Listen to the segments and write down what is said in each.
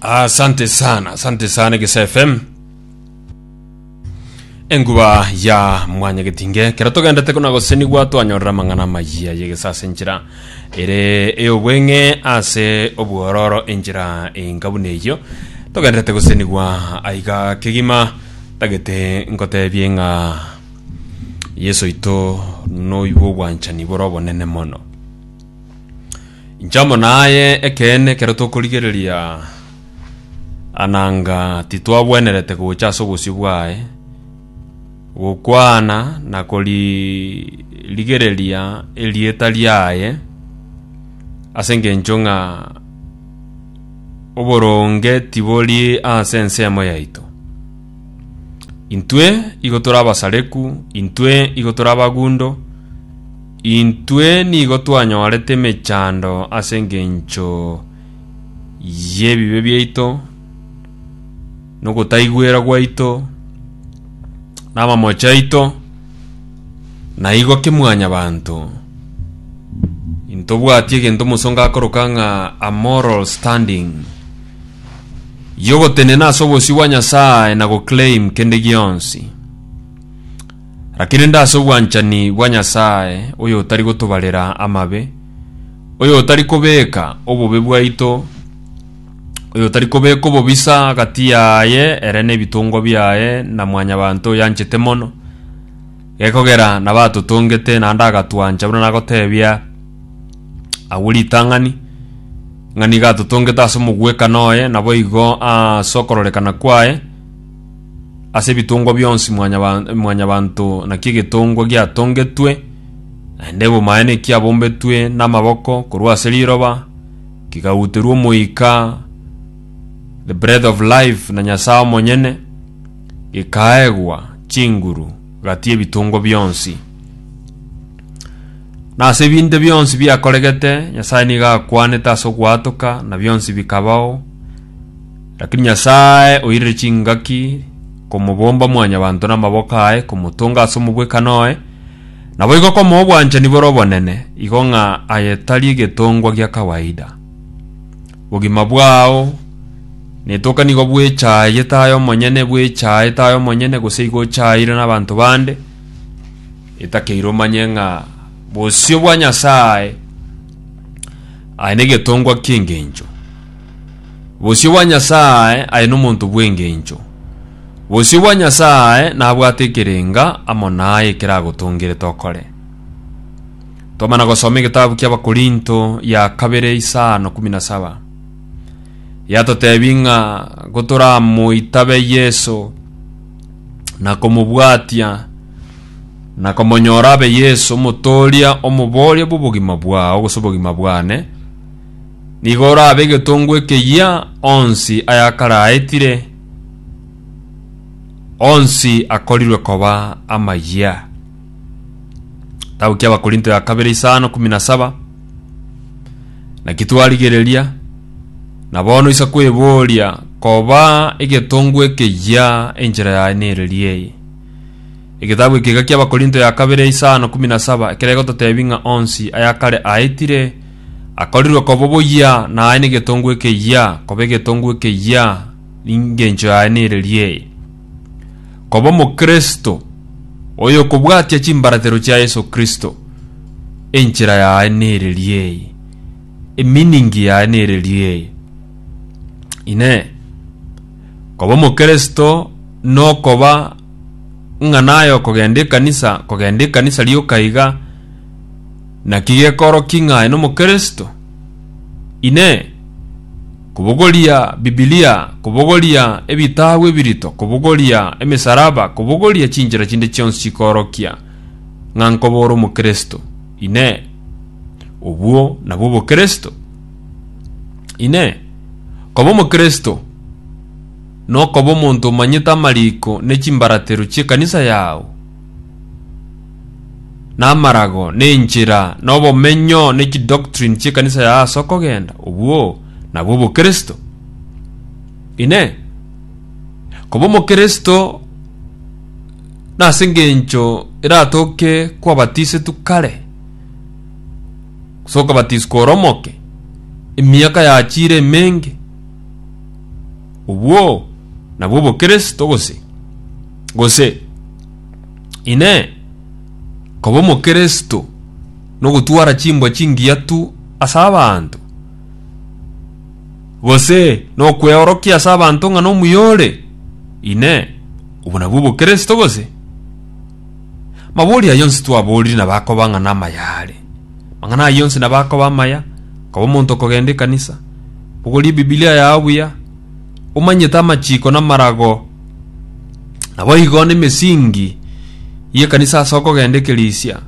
asante sana asante sana egesa fm enguba ya mwanya getinge kero togendete kuna gosenigwa twanyorera amang'ana amayia yegesa ase enchera ere eyobweng'e ase obwororo enchera enkabuna eyio togenderete gosenigwa aiga kegima tagete nkotebie ng'a yeso oito noigwa obwanchani bore obonene mono Inche amo naye ekeene ekero tokorigereria ananga titwagwenerete gocha ase obosio bwaye gokwana na koririgereria erieta riaye ase engencho ng'a oboronge tibori ase ensemo yaito. Intwe igo tore abasareku, intwe igo tore abagundo. Intwe nigo twanyorete emechando ase engencho y'ebibe biaito, na ogotaigwera gwaito, na amamocho aito, na igo ki mwanyabanto, intobwati egento omosongo akoroka ng'a a moral standing, y'ogotenena ase obosio bwa Nyasae na goclaim kende gionsi. Lakini nde ase obwanchani bwa Nyasae oyotari gotobarera amabe, oyotari kobeka obobe bwaito, oyotari kobeka obobisa agati yaye ere nebitongwa biaye na mwanyabanto oyanchete mono, gekogera nabatotongete naende agatwancha buna nagotebia agwo ritang'ani, ng'a nigo atotongete ase omogwekano oye, naboigo ase okororekana kwaye, Ase ebitongwa bionsi mwanyaba- mwanyabanto naki egetongwa giatongetwe, naende ebomaene kiabombetwe namaboko korwa ase riroba, kigauterwa Omoika, the breath of life, na Nyasae omonyene, gikaegwa chinguru gati y'ebitongwa bionsi. Na ase ebinde bionsi biakoregete, Nyasae nigo akwanete ase ogoatoka, na bionsi bikabao, Lakini Nyasae oirire chingaki komobomba mwanyabanto namaboko aye komotonga ase omobwekano oye, naboigo komoa obwanchani bore obonene, igo ng'a aye tari egetongwa gia kawaida. Bogima bwao netoka nigo bwechaayete aye omonyene, bwechaayete aye omonyene, gose igo ochaayeire nabanto bande, etakeire omanye ng'a bosio bwa Nyasae aye negetongwa kiengencho. Bosio bwa Nyasae aye nomonto bw'engencho. Bosio bwa Nyasae nabwate ekerenga amo naye ekeragotongerete okore. Twamana gosoma egetabu ki'Abakorinto ya kabere isano kumi na saba. Yatotebi ng'a gotoramoitabe Yeso na komobwatia na komonyora abe Yeso, omotooria, omoboria bw'obogima bwao gose obogima bwane, Nigo orabe egetongo ekeyia onsi ayakaraetire, onsi akorirwe koba amayia. Kitabu ki'Abakorinto ya kabere isano kumi na saba. Naki twarigereria, na bono isa kweboria, koba egetongo ekeyia enchera yaye nereria eye? Egetabu eke iga ki'Abakorinto ya kabere isano kumi na saba, ekero egototebia ng'a onsi ayakare aetire, Akorirwe koba oboyia naye negetongo ekeyia, koba egetongo ekeyia ningencho yaye nereria eye. Koba omokristo oyokobwatia chimbaratero chia Yeso Kristo, enchera yaye nereria eye, emeaning yaye nereria eye. Inee, koba omokristo nokoba ng'a naye okogenda ekanisa, kogenda ekanisa rioka iga, Naki gekorokio ng'ae n'Omokristo? Inee! Kobogoria Bibilia, kobogoria ebitabu ebirito, kobogoria emesaraba, kobogoria chinchera chinde chionsi chikorokia ng'a nkoba ore Omokristo? Inee! Obwo nabwo Obokristo? Inee! Koba Omokristo nokoba omonto omanyete amariko ne chimbaratero chi'ekanisa yao? na amarago, na enchera, na obomenyo, ne chidoctrine chiekanisa ya ase okogenda obwo nabwo obokristo. Inee, koba omokristo nase engencho eratoke kwabatisetwe kare, gose okabatiswa ore omoke, emiaka yachire emenge, obwo nabwo obokristo gose? Gose, Inee, koba Omokeresto nogotwara chimbwa chingiya tu ase abanto? Gose, nokweorokia ase abanto ng'a nomuya ore? Inee, obwo nabwo Obokeresto gose? Mabori ayio onsi twaborire nabo akoba ng'a namaya are. Amang'ana ayio onsi nabo akoba amaya, koba omonto okogenda ekanisa, bogoria Ebibilia yao buya, omanyete amachiko na amarago, naboigo nemesingi y'ekanisa ase okogenda ekerisia,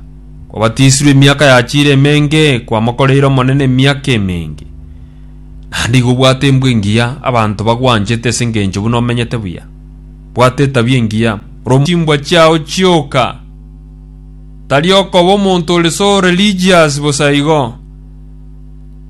kwabatisirwe emiaka yachiire emenge, kwamokoreire Omonene emiaka emenge, naende igo obwate embwe engiya, abanto bagwanchete ase engencho buna omenyete buya. Bwata etabia engiya, ore chimbwa chiao chioka, tari okoba omonto ore so religious bosa igo.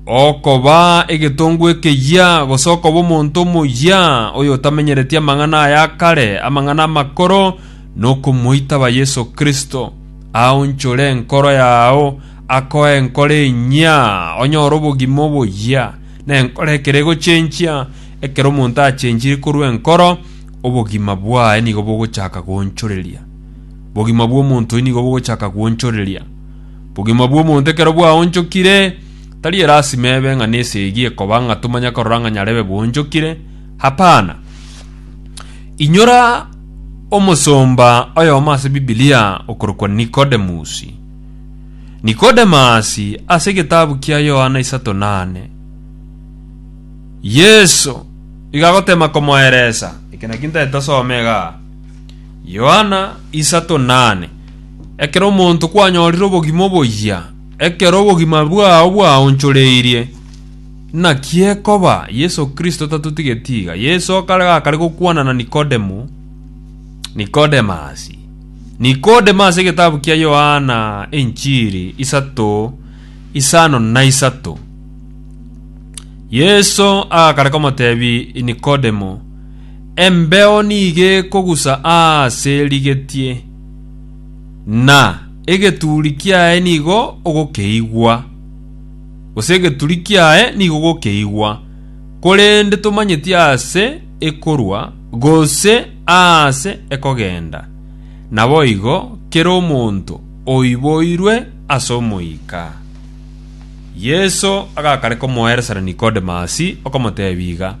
Okoba egetongo ekeyia, gose okoba omonto omoyia oyotamenyereti amang'ana aya akare, amang'ana amakoro, nokomoitaba Yeso Kristo, aonchore enkoro yao, akoe enkoro enyia, onyore obogima oboyia, na enkoro ekero egochenchia, ekero omonto achenchiri korwa enkoro, obogima bwaye nigo bogochaka goonchoreria. Bogima bw'omonto oyio nigo bogochaka gwoonchoreria. Obogima bw'omonto ekero bwaonchokire, tari erasima ebe ng'a nesegi ekoba ng'a tomanya korora ng'a nyarebe bwonchokire. Hapana. Inyora omosomba oyomo ase Bibilia okorokwa Nicodemus. Nicodemus ase egetabu kia Yohana isato nane. Yeso iga agotema komoeresa, eke naki ntaete osome igaa. Yohana isato nane. Ekero omonto kwanyorire obogima oboyia, ekero obogima bwao bwaonchoreirie, naki ekoba Yeso Kristo tatotigeti iga. Yeso akare gakare gokwana na Nikodemo, Nikodemasi. Nikodemo ase egetabu kia Yohana enchiri isato isano na isato. Yeso agakare komotebi Nikodemo, Embeo nigo ekogusa aase rigetie, na egeturi kiaye nigo ogokeigwa, gose egeturi kiaye nigo ogokeigwa, korende tomanyeti aase ekorwa, gose aase ekogenda. Naboigo kera omonto oiboirwe ase Omoika. Yeso agakareka omoeresani Nikodemasi, okomoteebia iga,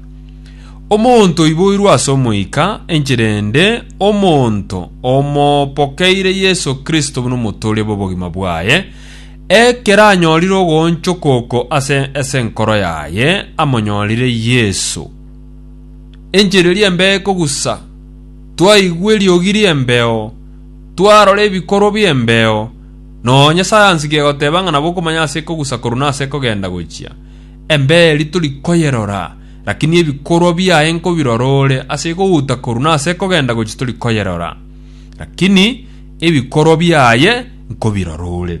Omonto oiboirwe ase Omoika, enchera ende omonto omobokeire Yeso Kristo buna omotooria bw'obogima bwaye, ekero anyorire ogoonchoka oko ase ase enkoro yaye, amonyorire Yeso. Enchera eria embeeko gusa, twaigwa eriogi ri'embeo, twarora ebikorwa bi'embeo, nonya sayansi kegoteeba ng'a nabo okomanya ase iko gusa korwa nase ekogenda gochia, embeo eria tori koyerora, Lakini ebikorwa biaye nkobirora ore ase kogouta korwa na ase kogenda gochia tori koyerora, lakini ebikorwa biaye nkobirora ore.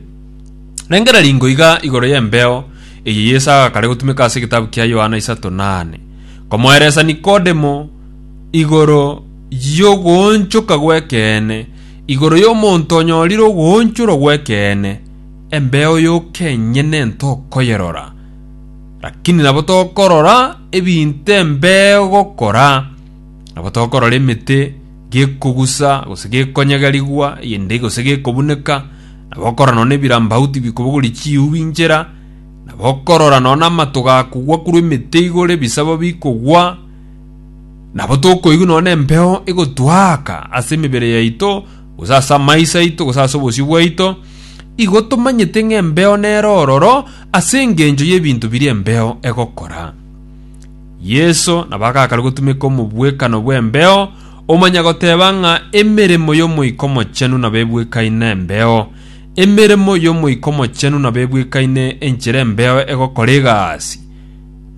Rengera ringo iga igoro y'embeo eye Yeso agakare gotumeka ase egetabu kia Yohana isato na ane, komoeresa Nikodemo igoro y'ogoonchoka gw'ekeene, igoro y'omonto onyorire ogoonchorwa gw'ekeene, embeo yoka enyene ntokoyerora, Lakini nabo tokorora ebinto embeo gokora, nabo tokorora emete gekogusa gose gekonyegerigwa eyende gose gekobuneka, nabo okorora nonya ebirambau tibikobogori chiubi inchera, nabo okorora nonya amato gakogwa korwa emete igoro ebisabo bikogwa, nabo tokoigwa nonya embeo egotwaaka ase emebere yaito gose ase amaiso aito gose ase obosio bwaito, igo tomanyete ng'a embeo nere ororo, Ase engencho y'ebinto biria embeo egokora, Yeso nabo agakare gotumeka omobwekano bw'embeo, omanya goteba ng'a emeremo y'Omoika Omochenu nabo ebwekaine nembeo. Emeremo y'Omoika Omochenu nabo ebwekaine enchera embeo egokora egasi.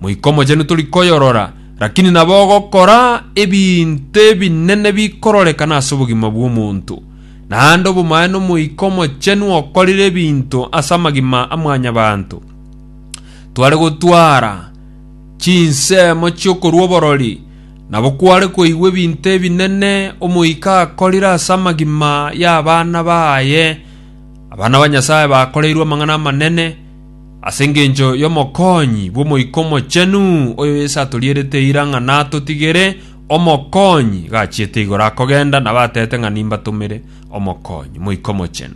Moika Omochenu tori koyorora, rakini nabo ogokora ebinto ebinene bikororekana ase obogima bw'omonto. naende obomaye n'Omoika Omochenu okorire ebinto ase amagima a mwanyabanto. Tware gotwara chinsemo chi'okorua oborori, nabo kware koigwa ebinto ebinene Omoika akorire ase amagima y'abana baye. Abana ba Nyasae bakoreirwe amang'ana amanene ase engencho y'omokonyi bw'Omoika Omochenu, oyo Yeso atorierete eira ng'a natotigere Omokonyi gachiete igoro akogenda, nabatebete ng'a nimbatomere Omokonyi, Moika Omochenu.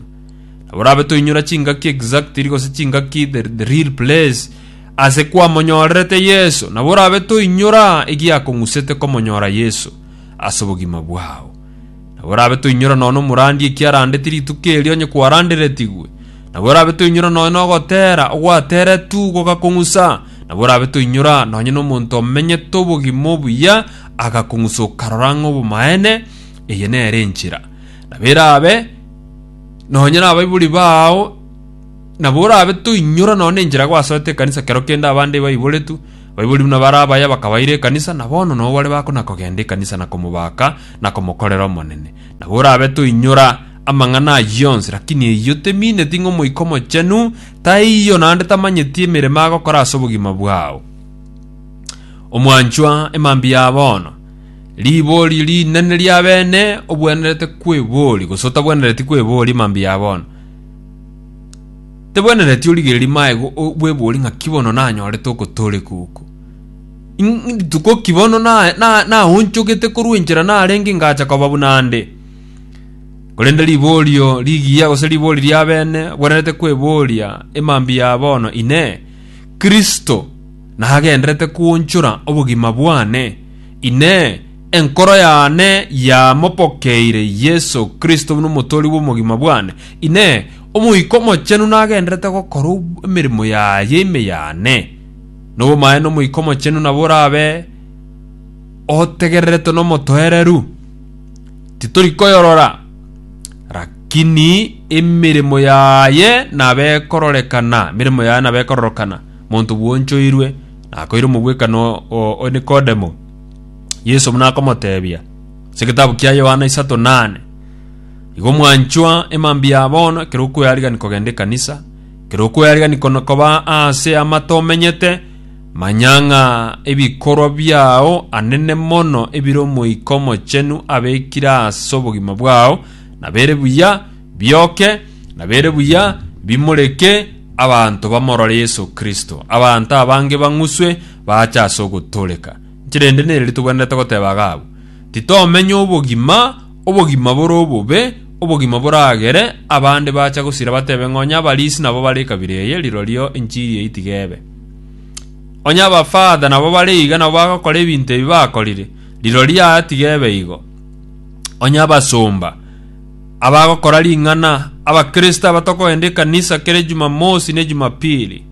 Nabo rabe toinyora chingaki exactly gose chingaki the, the real place ase kwamonyorerete Yeso, nabo rabe toinyora egiakong'usete komonyora Yeso ase obogima bwao. Nabo rabe toinyora nono omorandi ekiarandeti rituko erio onye kwaranderetigwe, nabo rabe toinyora nonya nogotera ogwateretwe gogakong'usa, Nabo orabe toinyora nonye nomonto omenyete obogima obuya agakong'usoka karora ng'a obomaene, eye nere enchera. Nabo erabe nonye nabaibori bao nabo orabe toinyora nonye nenchera gwasoete ekanisa kero kende abande baiboretwe baibori buna bare abaya bakabaira ekanisa na bono nabo bare bakona kogenda ekanisa na komobaka na komokorera Omonene. Nabo orabe toinyora amang'ana ayio onsi lakini eyio temineti ng'a Omoika Omochenu Taiyo naende tamanyeti emeremo agokora ase obogima bwao. Omwanchwa, emambia ya bono, ribori rinene ria bene, obwenerete kwebori gose otabwenereti kwebori emambia ya bono. Tebwenereti origereri maego o- bwebori ng'a kibono nanyorete ogotoreka oko. Ing- Rituko kibono na- na- naonchogete korwa enchera narenge ngacha koba buna ande. Korende riborio rigiya gose riboori ri'abene bwenerete kweboria emambia ya bono, Inee, Kristo nagenderete kwonchora obogima bwane? Inee, enkoro yane yamopokeire Yeso Kristo buna omotoori bw'omogima bwane? Inee, Omoika Omochenu nagenderete gokora emeremo yaye ime yane? Nobomaene Omoika Omochenu nabo orabe otegereretwe nomotoereru. titori koyorora, rakini emeremo yaye nabe ekororekana, emeremo yaye nabe ekororokana. Monto bwonchoirwe nakoire omogwekano o, o Nikodemo. Yeso buna akomotebia, ase egetabu kia Yohana isato nane, igo mwanchwa emambia ya bono, ekero okoyarigani kogenda ekanisa, ekero okoyarigani kono koba aase amate omenyete, Manya ng'a ebikorwa biao anene mono ebire Omoika Omochenu abekire ase obogima bwao, nabere buya bioke, nabere buya bimoreke abanto bamorore Yeso Kristo. Abanto abange bang'uswe baache ase ogotooreka. Inki rende nere ritogwenerete goteba iga abwo? Titomenya obogima, obogima bore obobe, obogima boragere, abande baacha gosira batebe ng'a onye abarisi nabo bare ekabira eye, rirorio enchiri eye tiga ebe. Onye abafather nabo bare iga nabo bagokora ebinto ebi bakorire, rirorio yaya tiga ebe igo. Onye abasomba abagokora ring'ana, abakristo aba tokogenda ekanisa kera Ejumamosi na Ejumapili,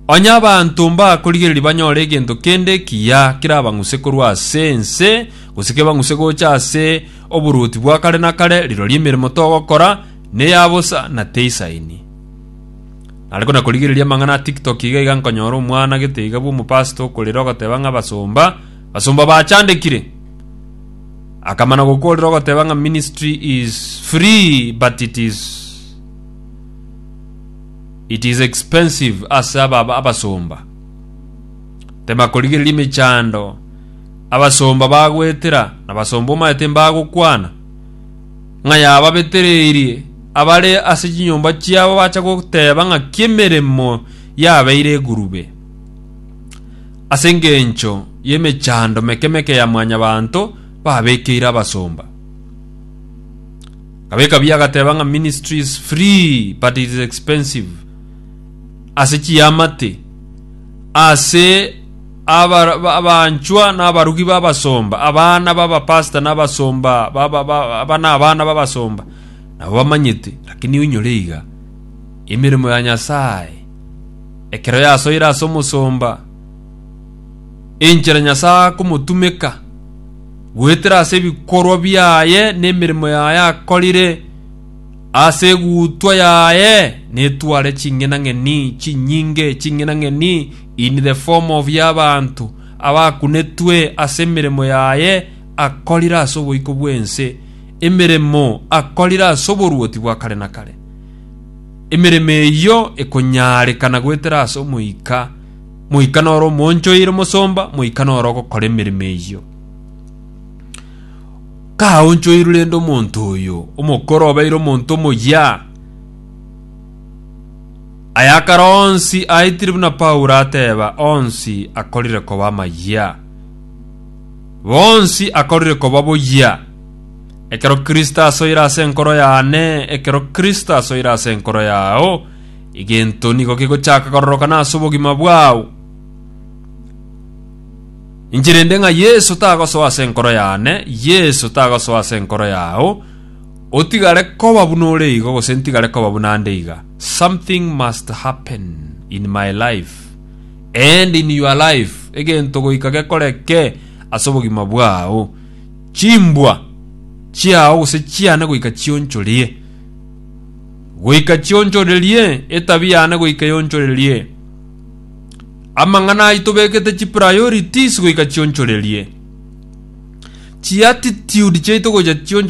onye abanto mbakorigereria banyore egento kende ekiya kerabang'use korwa ase ense, gose kebang'use gocha ase oboruoti bwa kare na kare, rirorio emeremo togokora neya bosa na teisaini. Nare kona korigereria amang'ana a TikTok iga iga nkonyora omwana gete iga bw'omopastor okorera ogoteba ng'a abasomba abasomba bachandekire. Akamana gokorera ogoteba ng'a ministry is free but it is it is expensive ase aba abasomba. Tema korigereria emechando abasomba bagoetera na abasomba omanyete mbagokwana. Ng'a yababetereirie abare ase chinyomba chiabo bacha goteba ng'aki emeremo yabeire egurube. Ase engencho y'emechando meke meke ya Mwanyabaanto babekeire abasomba. Gabeka bi agateba ng'a ministry is free but it is expensive ase chiamate ase Aba- ba- abanchwa na abarugi b'abasomba, abana b'abapasita na abasomba ba- ba- ba- aba na abana b'abasomba, nabo bamanyete, lakini oinyore iga emeremo ya Nyasae, ekero yasoire ase omosomba, enchera Nyasae akomotumeka goetera ase ebikorwa biaye na emeremo yaye akorire, ase egutwa yaye netware ching'enang'eni chinyinge, ching'enang'eni In the form of y'abanto abakunetwe ase emeremo yaye akorire ase oboiko bw'ense, emeremo akorire ase oboruoti bwa kare na kare. Emeremo eyio ekonyaarekana goetera ase omoika, moika noro omoonchoire omosomba, moika noro ogokora emeremo eyio. Kaonchoirwe rende omonto oyo, omokoro obeire omonto omoyia, Aya akare onsi aitire buna Paulo ateba, onsi akorire koba amayia. Bonsi akorire koba boyia. Ekero Kristo asoire ase enkoro yane, ekero Kristo asoire ase enkoro yao, egento nigo kegochaka kororokana ase obogima bwao. Inche rende ng'a Yeso tagosoa ase enkoro yane, Yeso tagosoa ase enkoro yao, Otigare koba buna ore igo gose ntigare koba buna ande iga. Something must happen in my life and in your life egento goika gekoreke ase obogima bwao. Chimbwa chiao gose chiane goika chionchorie. Goika chionchorerie etabi yane goika yonchorerie. Amang'ana ai tobekete chi priorities goika chionchorerie. Chi attitude chiaito gocha chionchorerie.